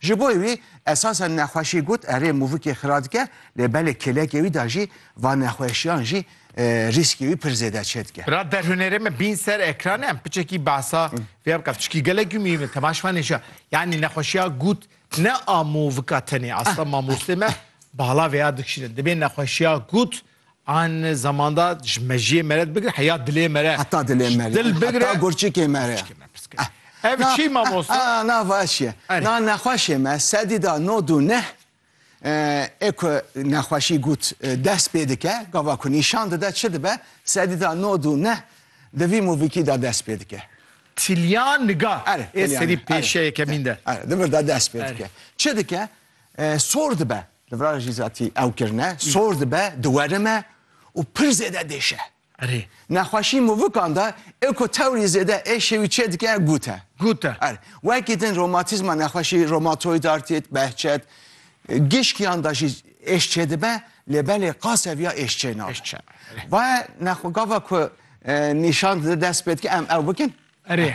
Ji bo wî esasen nexweşî got, erê mûvikê xira dike lê belê kêlekê wî de jî van nexweşiyan jî rîskê wî pir zêde çêdike. Ra derhûnerê me bîn ser ekranê em piçekî behsa vê bike çikî gelek gumî me temaş fanê jî yanî nexweşiya gut ne a mûvika tenê asla mamostê me bala vêya dikişîne dibê nexweşiya gut An zamanda ji mejiyê me re dibigire heya dilê me re. Heta dilê me re. Dil bigire. Heta gurçikê me re. Ev çi mamosta? Na vaşiye. Na nexweşê me sedî da no du neh ê ku nexweşî gut dest pê dike gava ku nîşan dide çi dibe sedî da no du neh di vî mûvîkî da dest pê dike. Tilya niga ê serî pêşeyê kemîn de. Di vir de dest pê dike. Çi dike? Sor dibe, li vir re jî zatî ew kirine, sor dibe, diwerime û pir zêde dêşe. Erê. Nexweşî movikan de ê ku tewrî zêde êşê wî çê dike gut e. Gut e. Erê. Wekî din romatîzma nexweşî romatoîd artît, behçet, gişkiyan de jî êş çê dibe lê belê qas seviya êş çê nabe. Êş çê. Va ye gava ku nîşan dide dest pê dike em ew bikin. Erê.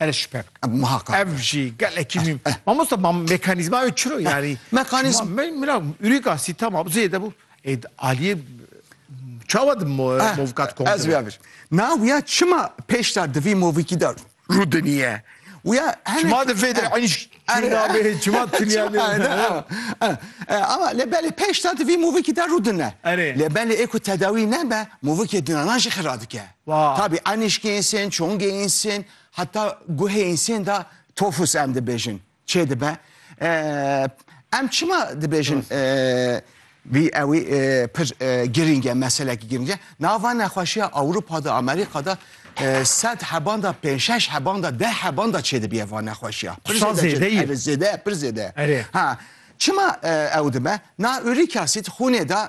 Erê şüphe bike. Muhakkak. Ev jî gelekî mîm. Mamosta ma mekanîzma ew çiro yanî. Mekanîzma mira ûrîka sîtama zê de bû. Ê aliyê çawa di movkat kom. Ez wî bir. Na wîya çima pêşta di vî movîkî de rû diniye. Wîya çima di vê de enîş nabê çima tuniya ne. Ama lê belê pêşta di vî movîkî de rû dine. Lê belê ê ku tedawî nebe movîkê dinanan jî xira dike. Tabî enîşkê însen, çongê însen, heta guhê însen de tofus em dibêjin çê dibe. Em çima dibêjin vî ewî pir girîng e, meselekî girîng e. Nava nexweşiya Ewropa de, Amerîka de sed heban de pênc şeş heban de deh heban de çê dibiye va nexweşiya. Pir zêde ye. Zêde ye, pir zêde ye. Ha, çima ew dibe? Na urîk asîd xûnê de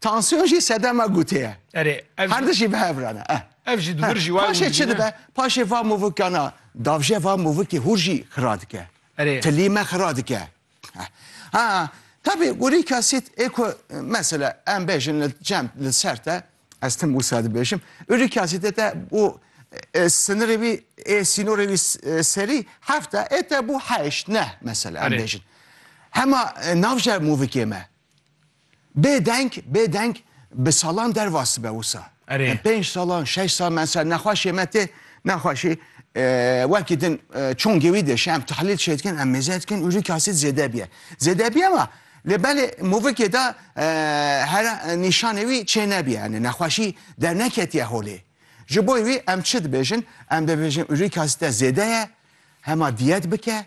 Tansiyon jî sedema gûtê ye. Erê, ev jî- Her di jî bi hev re ne. Eh. Ev jî di wir jî wayê Paşê wî çi dibîne. dibe? Paşê va movikana davje va movikê hûr jî xira dike. Erê. Tilî me xira dike. Eh. Ha, tevî urîk asîd ê ku mesela em bêjin li cem li ser te ez tim wisa dibêjim. Urîk asîdê te bû e, sinirê wî ê sînorê wî s- e, serî heft e, ê te bû heşt neh mesela em Erê. bêjin. Hema e, navje movikê me. Bê deng, bê deng bi salan dervas dibe wisa. Erê. Pênc salan, şeş sal mesela nexweşê me tê, nexweşî wekî din çongê wî de şi em tahlîl çê dikin, em mêze dikin û rîk asit zêde biye. Zêde biye ma lê belê movikê de here nîşanê wî çê nebiye yanî nexweşî derneketiye holê. Ji bo wî em çi dibêjin? Em dibêjin urîk asîte zêde ye, hema diyet bike.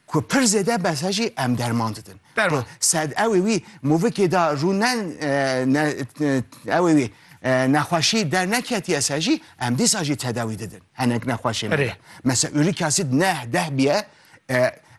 Ku pir zêde mesajî em derman didin. Derman. Sed ewê wî movikê da rû ne ewê wî nexweşî derneketiye se jî em dîsa jî tedawî didin. Henek nexweşê me. Mese ûrîk asid neh deh biye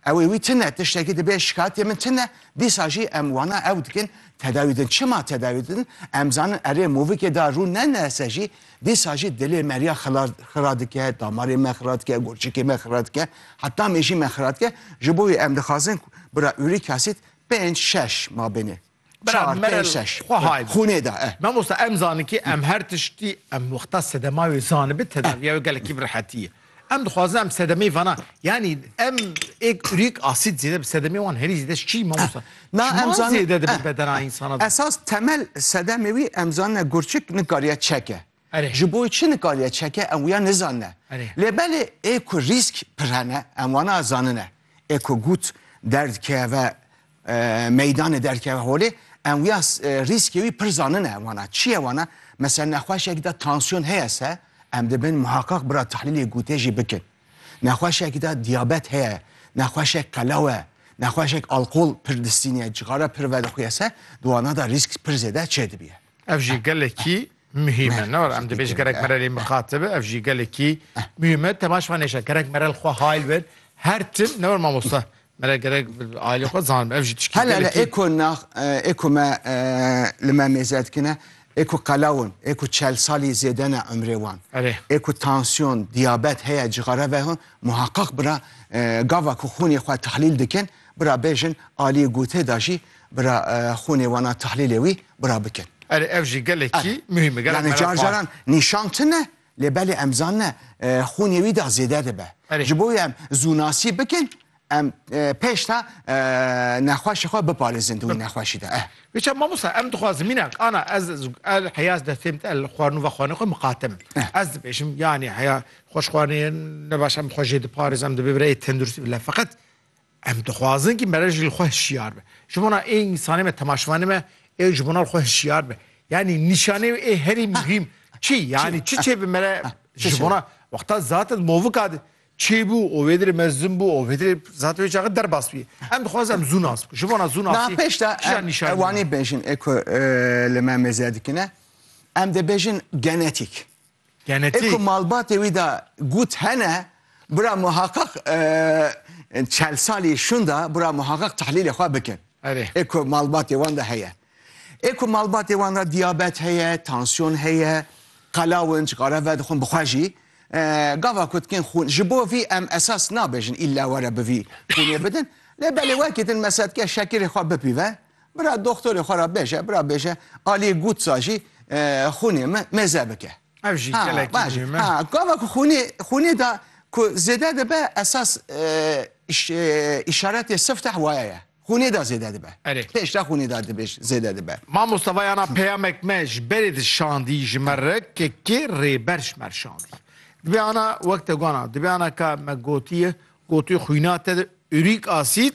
ewê wî tine tiştekî dibê şikayetê min tine dîsa jî em wana ew dikin tedawî din. Çima tedawî din? Em zanin erê movikê da rû ne nese jî Dîsa jî dilê me riya xira dike, damarê me xira dike, gurçikê me xira dike, heta mêjî me xira dike. Ji bo wê em dixwazin bira uric acid pênc şeş mabêne. Bira mere xwe hay be. Xûnê de e. Mamosta em zanin kî em her tiştî em wexta sedema wê zanibe tedaviya wê gelekî bi rehetî ye. Em dixwazin em sedemê vana yanî em êk urîk asîd zêde bi sedemê wan herî zêde çî mamosta. Na em zan zêde dibe bedena insana. Esas temel sedemê wî em zanne gurçik nikariye çeke. Ji bo çi nikariye çeke em wiya nizanne. Lê belê ê ku rîsk pir hene em wana zanine. Ê ku gut derdkeve meydanê derkeve holê em wiya rîskê wî pir zanine wana çiye wana mesela nexweşek de tansiyon heye se em dibin muhakak bira tahlîlê gûtê jî bikin nexweşek de diyabet heye nexweşek qelawe nexweşek alkol pir distîniye cixara pir vedixuye se di wana de rîsk pir zêde çê dibiye Ev jî gelekî muhîm e ne em dibêj gerek merelê miqate bi ev jî gelekî muhîm e temaşvanêşe gerek merel xwe hayl bin her tim ne mamosta Me re gerek ailê xwe zanim ev jî tişkî Hela hela gelekî. êko nax êko me li me mêze dikine êko qelaw in êko çel salî zêde ne umrê wan. Erê. Êko tansiyon, diyabet heye cixare ve hon muheqeq bira gava ku xûnê xwe tahlîl dikin bira bêjin aliyê gotê da jî bira xûnê wan a tahlîlê wî bira bikin. Erê ev jî gelekî muhîm e. Gelek Yani merak car caran nîşan tune Lê belê em zanine xûnê wî da zêde dibe. Ji bo wê em zûnasî bikin em pêşta nexweşê xwe biparêzin di wî nexweşî de. Biçe mamosta em dixwazin mînak ana ez el heyaz destêm te el xwarin û vexwanê xwe miqatim. Ez dibêjim yanî heya xweş xwanê ne baş em xwe jê diparêz em dibê bireyê tenduristî bile feqet Em dixwazin ki mere jî li xwe hişyar be. Ji bona ê însanê me, temaşvanê me ê ji bona li xwe hişyar be. Yanî nîşanê wê ê herî muhîm çi ye? Yanî çi çêbi mere ji bona wexta zaten movika de çêbû û wê dirê me zûn bû û wê dirê zaten wê çaxê derbas bûye. Em dixwazin em zû nas bikin. Ji bona zû nasî kîjan nîşanî? Ew anî bêjin ê ku li me mêze dikine. Em dê bêjin genetîk. Ê ku malbatê wî de gut hene, bira muheqeq çel salî şunda bira muheqeq tehlîlê xwe bikin. Ê ku malbatê wan de heye. Ê ku malbatê wan de diyabet heye, tansiyon heye, qelawinc, xareve dixwin bi xwe jî gava ku dikin xûn ji bo vî em esas nabêjin îlla were bi vî xûnê bidin. Lê belê wekî din mesela dike şekirê xwe bipîve. Bira doktorê xwe ra bêje, bira bêje aliyê gutsa jî xûnê me mêze bike. Ev jî gelekî muhîm e. Gava ku xûnê xûnê da ku zêde dibe esas îşaretê sifteh waye ye. Xûnê da zêde dibe. Erê. Pêş da xûnê da dibêj zêde dibe. Mamosta vayana peyamek me ji berê di şandî ji me re ke kê rêber ji mer şandî. Dibê ana wek te gona, dibê ana ka me gotiye, gotiye xûna te de urîk asîd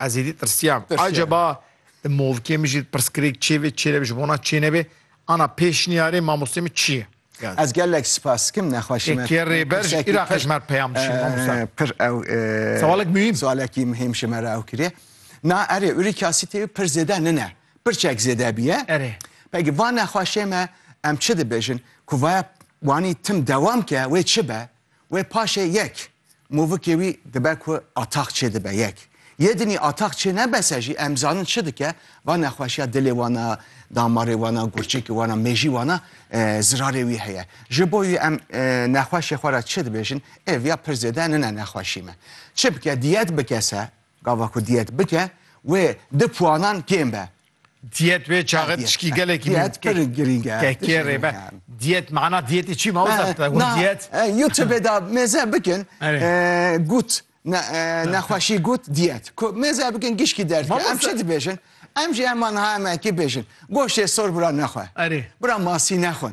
Ez êdî tirsiyam. Acaba di movkê min jî pirsgirêk çêbê, çênebê ji bona çênebê ana pêşniyarê mamostê min çi ye? Ez gelek spas dikim nexweşî me. Kê rêber ji Iraqê ji me re peyam dişîne mamosta? Pir ew Sewalek muhîm. Sewalekî muhîm ji me re ew kiriye. Na erê urî kasî tê pir zêde nine. Pirçek zêde bîye. Erê. Peki va nexweşê me em çi dibêjin? Ku vaya wanî tim dewam ke wê çi be? Wê paşê yek, movikê wî dibe ku atax çêdibe yek. Yê dinî atax çê nebese jî em zanin çi dike, va nexweşiya dilê wan a, damarê wan a, gurçekê wan a, mêjî wan a zirarê wî heye. Ji bo wî em nexweşê xwe re çi dibêjin? Ê viya pir zêde nine nexweşî me. Çi bike? Diyet bike se, gava ku diyet bike wê di puanan kêm be. Diyet wê çaxê tişkî gelekî diyet pir girîng e. Kekê rê be. Diyet mana diyetî çî mawza te hûn diyet. YouTube da mêze bikin gut nexweşî gut diyet. Ku mêze bikin gişkî derd. Em çi dibêjin? Em jî heman ha em ekî bêjin. Goştê sor bira nexwe. Bira masî nexwin.